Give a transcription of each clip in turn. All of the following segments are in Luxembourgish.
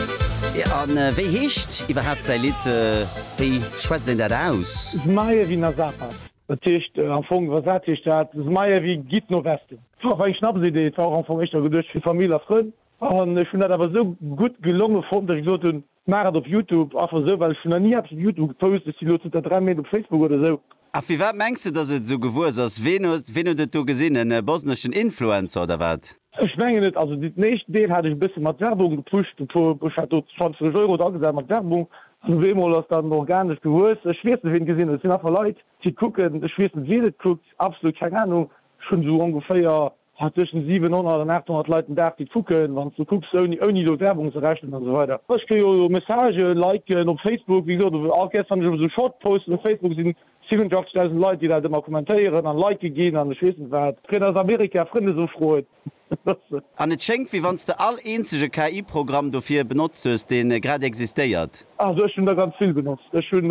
A wéi heescht iwwerhaapt säi Lidd? Wéi schwätzt een dat aus? Zmaje vi na zapad, dat heescht am Fong, Wa sat heescht dat? Zmaje vi, Gitt no Westen. Et war awer eng Schnapsidee, et war och am Fong éischter geduecht fir Famill a Frënn an ech hunn dat awer esou gutt gelonge fonnt, datt ech gesot hunn, ech maachen et op Youtube. Einfach esou, well ech hunn nach ni eppes op Youtube gepost, ech si elo zënter 3 Méint op Facebook oder esou. A firwat mengs de, dass et esou gewuess ass? Ween huet, ween huet et do gesinn? En bosneschen Influencer oder wat? Ech mengen et, also den éischten Deel hat ech e bësse mat Werbung gepusht, e puer, ech hat do 20 Euro dra gesat mat Werbung, an op eemol ass dann organesch gewuess, ech weess net ween et gesinn huet, et sinn einfach Leit déi et kucken, ech weess net wien et kuckt, absolut keng Ahnung, ech hunn esou ongeféier Hat tëschent 700 an 800 Leit den Dag déi d'kucken, wann s du kucks ouni ouni elo Werbung ze rechnen an esou weider. Ech kritt jo elo Messagen, Liken op Facebook, wéi gesot och gestern han ech op esou Short Posten op Facebook sinn 87.000 Leit déi dat ëmmer kommentéieren an Like ginn an ech weess net wat. Kritt aus Amerika Frëndesofroen. An et schéngt wéi wann s de all eenzege KI Programm dofir benotzt hues dee grad existéiert. Also ech hunn der ganz vill benotzt. Ech hunn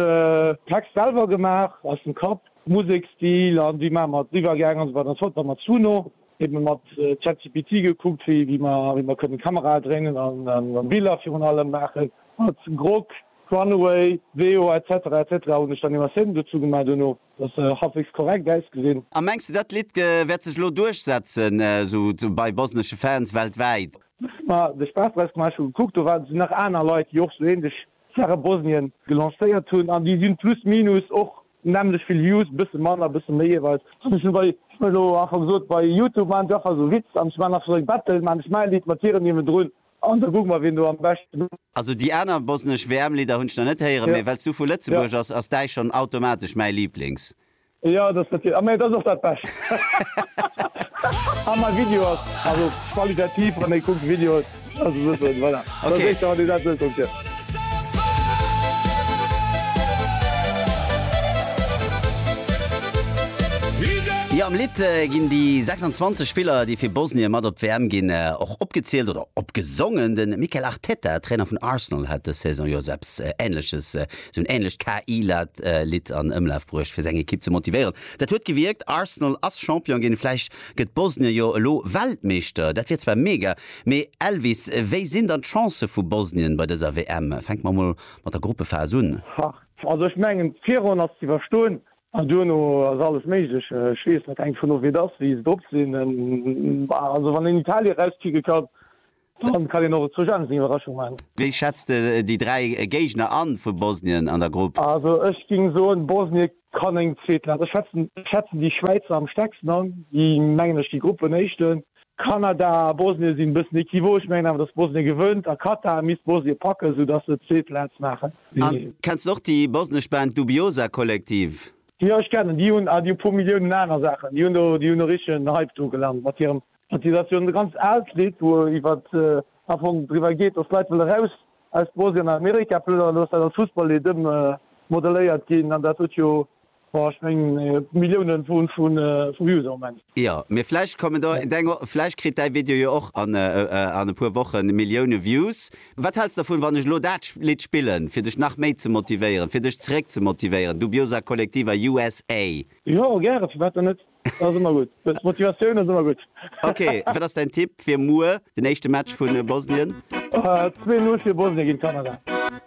Text selwer gemaach aus dem Kapp. Musekstil an wéi maache mer den Iwwergaang an esou weider an esou fort. Dann mat Suno ebe mat ChatGPT gekuckt, wéi mer kënnen Kamerae dréinen a Biller virun allem maachen. Mat Grok, Runway, Veo etc etc hunn ech dann Imassaione dozou gemaach duerno, dass se halfwegs korrekt ausgesinn. A mengs de dat Lidd wäert sech elo duerchsetzen esou bei bosnesche Fans weltwäit? Hu mer de Spaass draus gemaach, hu gekuckt, do waren nach aner Leit déi och esou ähnlech Saache Bosnien gelancéiert hunn an déi si plus minus och Nämlech vill Views, bësse manner, bësse méi jeeweils. An ech hunn bei, ech hunn elo einfach gesot, bei Youtube maachen ech einfach esou Witz an ech maachen einfach esou eng Battle, maachen ech mäi Lidd mat hirem niewendrun an da kucke mer wien do am beschten. Also déi aner bosnesch WM Lidder hunn ech nach net héieren, mee well s du vu Lëtzebuerg ass, ass däi schonn automatesch mäi Liblings. Jo, dat ass natierlech, a mee et ass och dat bescht. A mäi Video ass also qualitativ, wann ee kuckt Videos. Jo, am Lidd ginn déi 26 Spiller, déi fir Bosnien mat op d'WM ginn, och opgezielt oder opgesongen. De Mikel Arteta, Trainer vun Arsenal, hat dës Saison jo esou eppes Änleches, esou en änlecht KI-Lidd an Ëmlaf bruecht, fir seng Ekipp ze motivéieren. Dat huet gewierkt, Arsenal ass Champion ginn. Vläicht Gëtt Bosnien jo elo Weltmeeschter, dat wier zwar mega, mee Elvis, wéi sinn dann d'Chancë vu Bosnien bei dëser WM? Fänke mer mol mat der Gruppephas un. Hah, also ech mengen d'Virronn ass ze iwwerstoen an duerno ass alles méiglech. Ech weess net, hänkt drvun of wéi et ass, wéi se drop sinn. Bah, also wann een Italien erauspicke kann, Dann kann een och zu Genf eng Iwwerraschung maachen. Wéi schätzt de déi 3 Géigner an vu Bosnien an der Grupp? Also ech ging soen Bosnie kann eng zweet Plaatz, ech schätzen schätzen déi Schwäizer am stärksten an, déi mengen ech gi Gruppenéischten. Kanada a Bosnien sinn bëssen equivoque, ech mengen awer dass Bosnien gewënnt a Katar misst Bosnien packen sou dass se zweet Plaatz maachen. Kenns de och déi bosnesch Band Dubioza Kollektiv? Jo ech kennen déi, hunn a déi hu puer Milliounen aner Saachen, déi hunn do déi hunn e richtegen Hype do gelant mat hirem Et ass jo e ganz aalt Lidd, wou iwwer am Fong driwwer geet, datt d'Leit wëlle raus aus Bosnien an Amerika plënneren. Elo ass dat als Fussballlidd ëmmodeléiert ginn an dat huet jo, boah, ech mengen, Millioune vu Views am Moment. Jo, mee vläicht kommen der, vläicht kritt däi Video jo och an e puer Woche Millioune Views. Wat häls de dervun, wann ech elo dat Lidd spillen, fir dech nach méi ze motivéieren, fir dech zeréck ze motivéieren, Dubiosa Collectiva, USA? Jo, gäre, firwat dann net? Dat ass ëmmer gutt. Motivatioun ass ëmmer gutt. Ok, wat ass däin Tipp fir muer den éischte Match vu Bosnien? 2, 0 fir Bosnien géint Kanada.